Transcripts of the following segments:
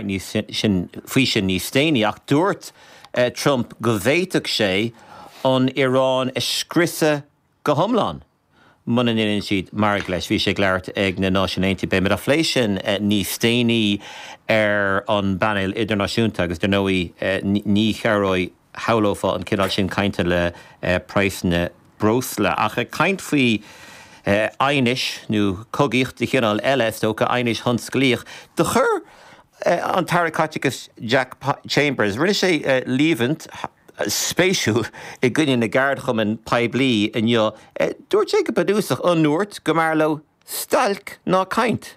níos faoi sin níos déanaí, ach dúirt Trump go bhféadfadh sé an Iaráin a scriosadh go hiomlán muna ndéanann siad margadh leis. Bhí sé ag labhairt ag na Náisiúin Aontaithe, beidh muid á phlé sin níos déanaí ar an bpainéal idirnáisiúnta, agus dar ndóigh ní chabhróidh. shamhlófá an cineál sin cainte le praghsanna breosla. Ach ag caint faoi aighneas, nó cogaíocht de chineál eile, is dócha, aighneas tionsclaíoch, do chuir an tAire Caiteachais Jack Chambers, rinne sé líomhaint spéisiúil i gcoinne na gceardchumann poiblí inniu. Dúirt sé go bunúsach, ar ndóigh, go mb'fhearr leo stailc ná caint.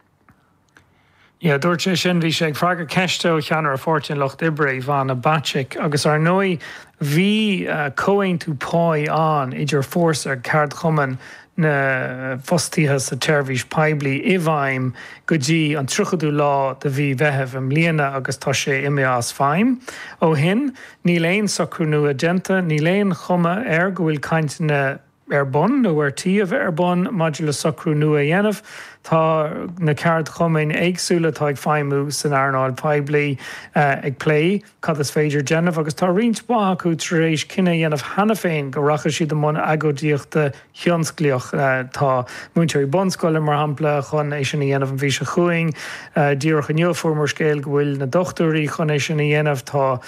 Yeah, dúirt sé sin, bhí sé ag freagairt ceiste ó cheannaire Pháirtí an Lucht Oibre, Ivana Bacik, agus ar ndóigh bhí comhaontú páí ann idir Fórsa, ceardchumann na bhfostaithe sa tseirbhís poiblí, i bhfeidhm go dtí an 30ú lá de mhí Mheithimh i mbliana agus tá sé imithe as feidhm ó shin. Níl aon socrú nua déanta, níl aon chuma air go bhfuil cainteanna ar bun nó ar tí a bheith ar bun maidir le socrú nua a dhéanamh. Tá na ceardchumainn éagsúla atá ag feidhmiú san earnáil phoiblí ag plé cad is féidir déanamh agus tá roinnt mhaith acu tar éis cinneadh a dhéanamh cheana féin go rachaidh siad i mbun agóidíochta thionsclaíoch. Tá múinteoirí bunscoile, mar shampla, chun é sin a dhéanamh an mhí seo chugainn. Díreach inniu a fuaireamar scéal go bhfuil na dochtúirí chun é sin a dhéanamh. Tá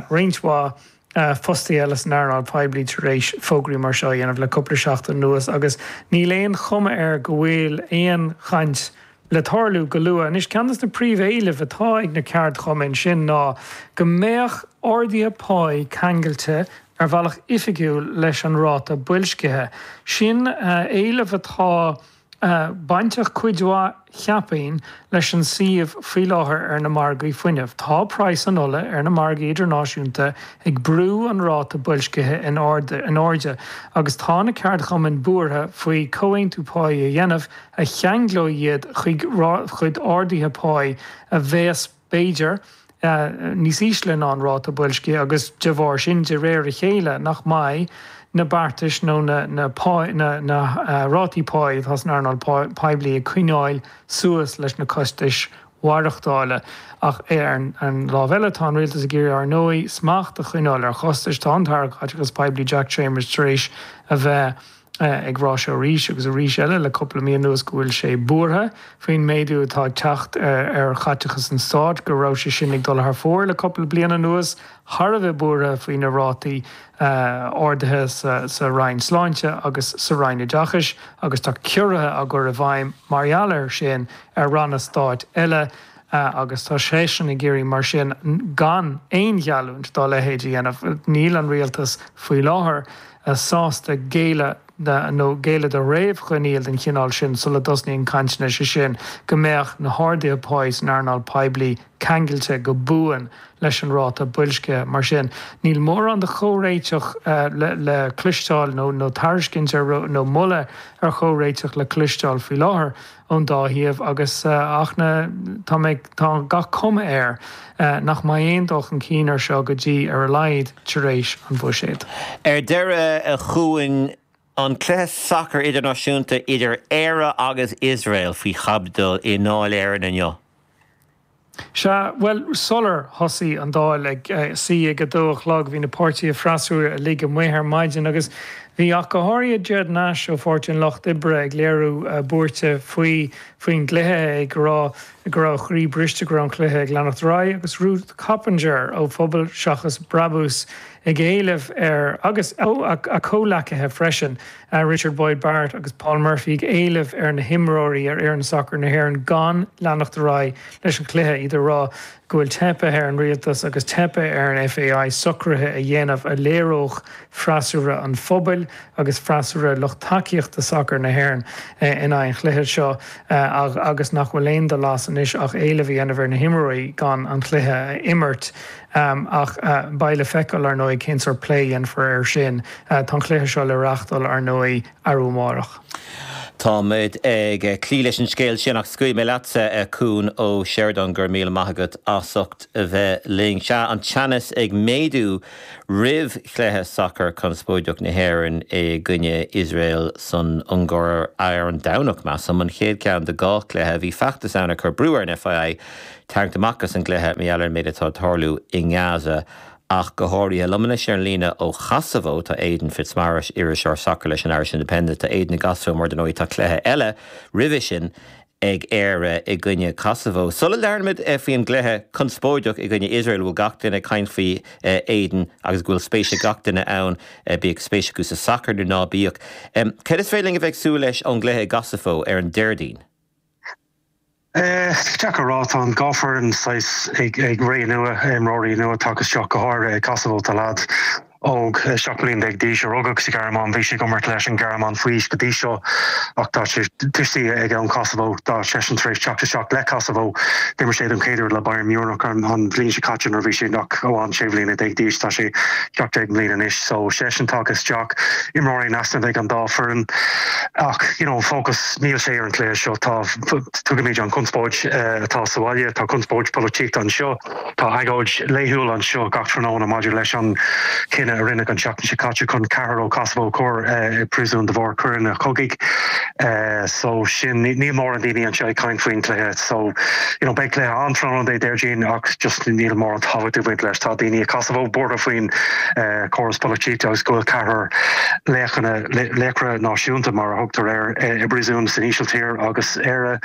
roinnt mhaith. fostaithe eile san earnáil poiblí tar éis fógraí mar seo a dhéanamh le cúpla seachtain anuas agus níl aon chuma air go bhfuil aon chaint le tarlú go luath. Anois, ceann de na príomh-éilimh atá ag na ceardchumainn, sin ná go mbeadh arduithe páí ceangailte ar bhealach oifigiúil leis an ráta boilscithe. Sin éileamh atá. bainteach cuid mhaith, cheapfainn, leis an suíomh faoi láthair ar na margaí fuinnimh. Tá praghas na hola ar na margaí idirnáisiúnta ag brú an ráta boilscithe in airde agus tá na ceardchumainn buartha faoi chomhaontú páí a dhéanamh a cheanglóidh iad chuig arduithe páí a bheas b'fhéidir, níos ísle ná an ráta boilscithe agus de bharr sin, de réir a chéile, nach mbeidh na beartais nó na rátaí páí atá san earnáil poiblí ag coinneáil suas leis na costais mhaireachtála. Ach ar an lámh eile, tá an rialtas ag iarraidh, ar ndóigh, smacht a choinneáil ar chostais. Tá an tAire Caiteachais Poiblí Jack Chambers tar éis a bheith. ag rá seo arís agus arís eile le cúpla mí anuas go bhfuil sé buartha faoin méadú atá ag teacht ar chaiteachas an stáit, go raibh sé sin ag dul thar fóir le cúpla bliain anuas, thar a bheith buartha faoi na rátaí ardaithe sa Roinn Sláinte agus sa Roinn Oideachais agus tá ciorruithe á gcur i bhfeidhm mar gheall air sin ar ranna stáit eile agus tá seisean ag iarraidh mar sin gan aon gheallúint dá leithéid a dhéanamh. Níl an rialtas faoi láthair sásta géilleadh nó géilleadh do réamhchoinníoll den chineál sin sula dtosnaíonn cainteanna, sé sin, go mbeadh na harduithe páí san earnáil poiblí ceangailte go buan leis an ráta boilscithe. Mar sin, níl mórán de chomhréiteach le cloisteáil, nó tairiscint ar nó moladh ar chomhréiteach le cloisteáil faoi láthair. ón dá thaobh agus ach ní, tá, beidh, tá gach cuma air nach mbeidh aon dul chun cinn ar seo go dtí ar a laghad tar éis an bhuiséad. Ar deireadh chugainn an cluiche sacair idirnáisiúnta idir Éire agus Iosrael faoi chaibidil i nDáil Éireann inniu. Sea, bhuel, sular thosaigh an Dáil ag suí ag a dó a chlog, bhí na páirtithe freasúra uilig amuigh ar maidin agus bhí ach go háirithe Ged Nash ó Pháirtí an Lucht Oibre ag léiriú buairte faoi faoin gcluiche, é ag rá go raibh a chroí briste go raibh an cluiche ag leanacht ar aghaidh agus Ruth Coppinger ó Phobal Seachas Brabús ag éileamh ar agus a comhleacaithe freisin. Richard Boyd Barrett agus Paul Murphy ag éileamh ar na himreoirí ar fhoireann sacair na hÉireann gan leanacht ar aghaidh leis an chluiche, iad ag rá go bhfuil teipthe ar an rialtas agus teipthe ar an FAI socruithe a dhéanamh a léireodh freasúra an phobail agus freasúra lucht tacaíochta sacair na hÉireann in aghaidh an chluiche seo agus nach bhfuil aon dul as anois ach éileamh a dhéanamh ar na himreoirí gan an cluiche a imirt. Ach beidh le feiceáil, ar ndóigh, cén sórt plé a dhéanfar air sin. Tá an cluiche seo le reáchtáil, ar ndóigh, arú amárach. Táimid ag cloí leis an scéal sin ach scaoilfidh mé leatsa, a Chuain Uí Sheireadáin, go raibh míle maith agat as ucht a bheith linn. Sea, an teannas ag méadú roimh chluiche sacair conspóideach na hÉireann i gcoinne Iosrael san Ungáir ar an Domhnach, measaim, an chéad cheann de dhá chluiche. Bhí feachtas ann ag cur brú ar an FAI tarraingt amach as an gcluiche mar gheall ar an méid atá ag tarlú i nGaza ach go háirithe. Liom anois ar an líne ó Chosobhó tá Aidan Fitzmaurice, iriseoir sacair leis an Irish Independent. Tá Aidan i gCosobhó mar, dar ndóigh, tá cluiche eile roimhe sin ag Éire i gcoinne Chosobhó. Sula labhróimid faoin gcluiche conspóideach i gcoinne Iosrael a bhfuil gach duine ag caint faoi, a Aidan, agus go bhfuil spéis ag gach duine ann, bíodh spéis acu sa sacar nó ná bíodh, céard is féidir linn a bheith ag súil leis ón gcluiche i gCosobhó ar an Déardaoin? Is deacair a rá, tá an dhá foireann saghas ag ré nua, imreoirí nua tagtha isteach, go háirithe i Kosovo, tá leaid óg 17 bliain d'aois a rugadh sa Ghearmáin, bhí sé ag imirt leis an Ghearmáin faoi aois go dtí seo ach tá sé, tuistí aige ón Kosovo, tá seisean tar éis teacht isteach le Kosovo, d'imir sé don chéad uair le Bayern Munich an bhliain seo caite nuair a bhí sé ach amháin 16 bliana d'aois, tá sé 17 mbliana anois so seisean tagtha isteach, imreoirí in easnamh ag an dá foireann ach you know an fócas. Níl sé ar an cluiche seo. Tá, tuigimid an conspóid atá sa bhaile, tá conspóid pholaitíochta anseo, tá agóid laethúil anseo gach tráthnóna maidir leis an cinneadh a rinneadh an tseachtain seo caite chun ceathrar ó Kosovo a chur i bpríosún de bharr coireanna cogaidh. So sin, níl mórán daoine anseo ag caint faoin chluiche. So, you know, beidh cluiche ann tráthnóna Dé Déardaoin ach just níl mórán tábhacht ag baint leis. Tá daoine i Kosovo buartha faoin córas polaitíochta agus go bhfuil ceathrar laoch ina. laochra náisiúnta mar a thugtar air, i bpríosún san Ísiltír agus Éire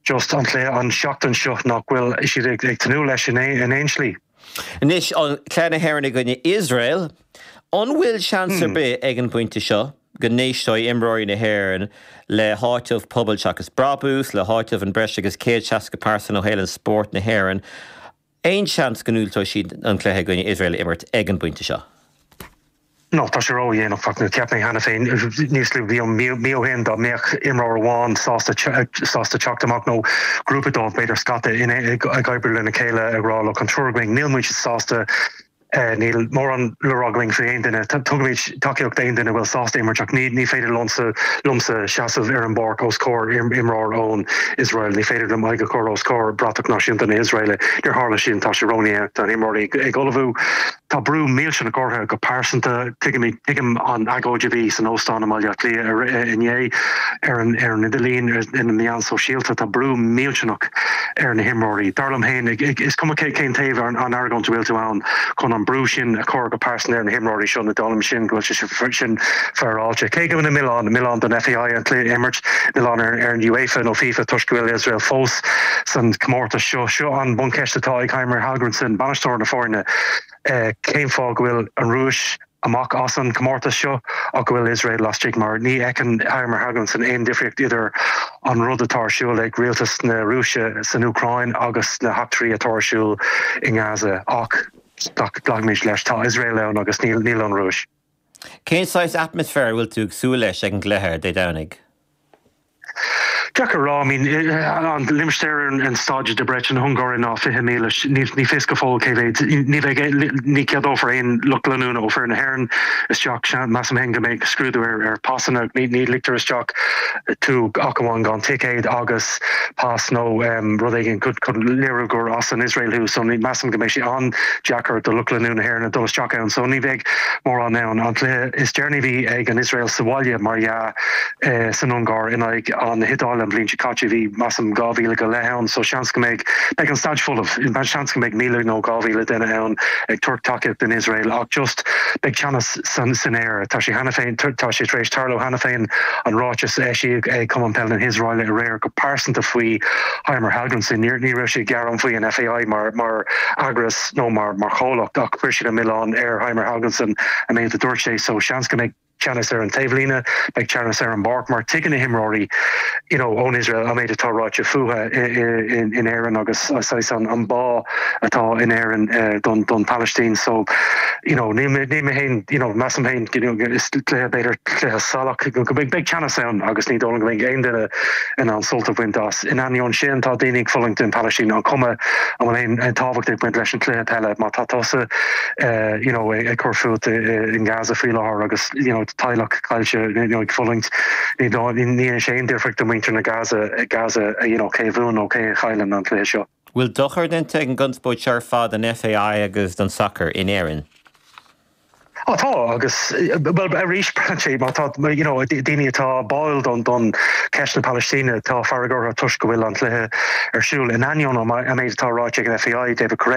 just an cluiche an tseachtain seo nach bhfuil siad ag tnúth leis in aon slí. Anois an cluiche na hÉireann i gcoinne Iosrael, an bhfuil seans ar bith ag an bpointe seo go n-éisteoidh imreoirí na hÉireann le háiteamh pobail seachas brabús, le háiteamh an breis agus 160 pearsan ó shaol spóirt na hÉireann Aon seans go ndiúltóidh siad an cluiche i gcoinne Iosrael a imirt ag an bpointe seo? Nó tá sé ró-dhéanach ach cheap mé cheana féin níos luaithe i mbliana, mí, mí ó shin dá mbeadh imreoir amháin sásta, sásta teacht amach nó grúpa dóibh, b'fhéidir scata, ag, ag oibriú lena chéile ag rá, look, an triúr againn, níl muid sásta, Níl mórán le rá againn faoi aon duine. Tugaimid tacaíocht d'aon duine a bhfuil sásta imirt ach ní ní féidir liomsa seasamh ar an bpáirc os comhair imreoir ón Iosrael. Ní féidir liom aghaidh a chur os comhair bratach náisiúnta na hIosraele. Níor tharla sin. Tá sé ródhéanach. Tá na himreoirí ag ullmhú. Tá brú millteanach orthu go pearsanta. Tuigim, tuigim an agóid a bhí san óstán i mBaile Átha Cliath inné, ar an idirlíon, ar na meáin sóisialta, tá brú millteanach ar na himreoirí. Dar liom féin, is cuma cén taobh ar an argóint a bhfuil tú ann, chun an brú sin a chur go pearsanta ar na himreoirí seo ní dóigh liomsa, go bhfuil sé sin féaráilte. Cé go mbeidh milleán, milleán don FAI an cluiche a imirt, milleán ar an UEFA nó FIFA toisc go bhfuil Iosrael fós san comórtas seo, seo an bhuncheist atá ag Heimir Hallgrímsson, bainisteoir na foirne. cén fáth go bhfuil an Rúis amach as an comórtas seo ach go bhfuil Iosrael laistigh mar ní fheiceann Heimir Hallgrímsson aon difríocht idir an rud atá ar siúl ag rialtas na Rúise san Úcráin agus na heachtraí atá ar siúl i nGaza ach glacaimid leis tá Iosrael ann agus níl níl an Rúis Cén saghas atmaisféar a bhfuil tú ag súil leis ag an gcluiche Dé Domhnaigh? Deacair a rá. I mean an limistéar ar an staid i Debrecen na hUngáire ná 20,000 ní ní fios go fóill cé mhéid ní bheidh ní ceadófar aon lucht leanúna ó foireann na hÉireann isteach seans measaim féin go mbeidh scrúdú ar ar pasanna ní ní ligtear isteach tú ach amháin gan ticéad agus pas nó rud éigin chun léiriú gur as an Iosrael thú so measaim go mbeidh sé an-deacair do lucht leanúna na hÉireann dul isteach ann so ní bheidh mórán ann. An cluiche is deireanaí a bhí ag an Iosrael sa bhaile mar dhea san Ungáir in aghaidh na hIodáile an bhliain seo caite. Bhí measaim 2,000 go leith ann so seans go mbeidh beidh an staid folamh. Seans go mbeidh 1,000 nó 2,000 duine ann ag tabhairt taca don Iosrael ach just beidh teannas san aer. Tá sé cheana féin tá sé tar éis tarlú cheana féin an ráiteas a eisíodh ag Cumann Peile na hIosraele aréir go pearsanta faoi Heimir Hallgrímsson. Ní raibh sé ag gearán faoi an FAI mar mar eagras. nó mar chomhlacht ach chuir siad an milleán ar Heimir Hallgrímsson an méid a dúirt sé, so seans go mbeidh teannas ar an taobhlíne, beidh teannas ar an bpáirc mar tuigeann na himreoirí you know ón Iosrael an méid atá ráite fúthu in Éirinn agus saghas an bá atá in Éirinn don Phalaistín so you know níl mé níl mé féin you know measaim féin you know is cluiche b'fhéidir cluiche salach go mbeidh beidh teannas ann agus ní dóigh liom go mbeidh aon duine in ann sult a bhaint as In ainneoin sin, tá daoine ag fulaingt in Palaistín an chuma an bhfuil aon tábhacht ag baint leis an chluiche peile má tá tusa you know ag cur fút in Gaza faoi láthair agus you know teaghlach caillte you know ag fulaingt. Ní dhéanfaidh sé aon difríocht do mhuintir na Gaza Gaza you know cé a bhuann nó cé a chailleann an cluiche seo. bhfuil dochar déanta ag an gconspóid seo ar fad don FAI agus don sacar in Éirinn? Ó tá agus, bhuel arís braitheann sé mar tá you know daoine atá báúil don don cheist na Palaistíne atá fearg orthu toisc go bhfuil an cluiche ar siúl in ainneoin an méid atá ráite ag an FAI, David Courell.